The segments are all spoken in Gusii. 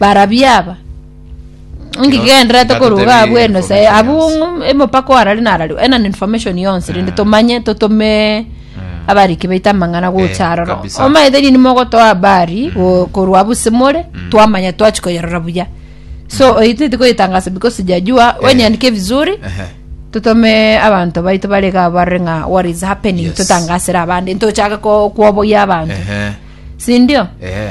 Barabwo aba. Onge Kino- kigenderete koruga ndatotebie abwo eno se information abwo yonsi. ng'um- emopako arari narari ena ni information yonsi rende tomanye totome abariki baito amang'ana gocha aroro kabisa. omaete nini mogotoa habari go- korwa abwo simore twamanya twachi koyerora buya so oititi koyetangasa because jajua wenyanike vizuri Ehe. totome abanto baito bare iga barore ng'a what is happening Yes. totangasere abande ntochake ko- kwoboyia abanto Ehe. sindio Ehe.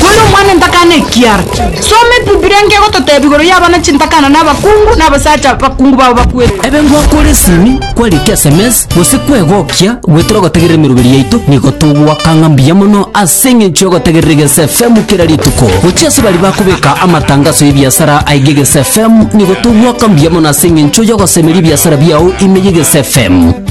Kore omwana entakana ekiara. Soma ebibilia enke egototebia igoro y'abana chintakana na abakungu na abasacha abakungu babo bakwete. Ebe ngwakore esimi, kwarika sms, gose kwegokia, goetera ogotegerera emeroberi yaito, nigo togwaka ng'a mbuya mono ase eng'encho y'ogotegerera Egeso FM kera rituko. Gochia ase baria bakobeka amatangaso y'ebiasara aiga Egeso FM, nigo togwaka mbuya mono ase eng'encho y'ogosemeria ebiasara biao ime y'Egeso FM.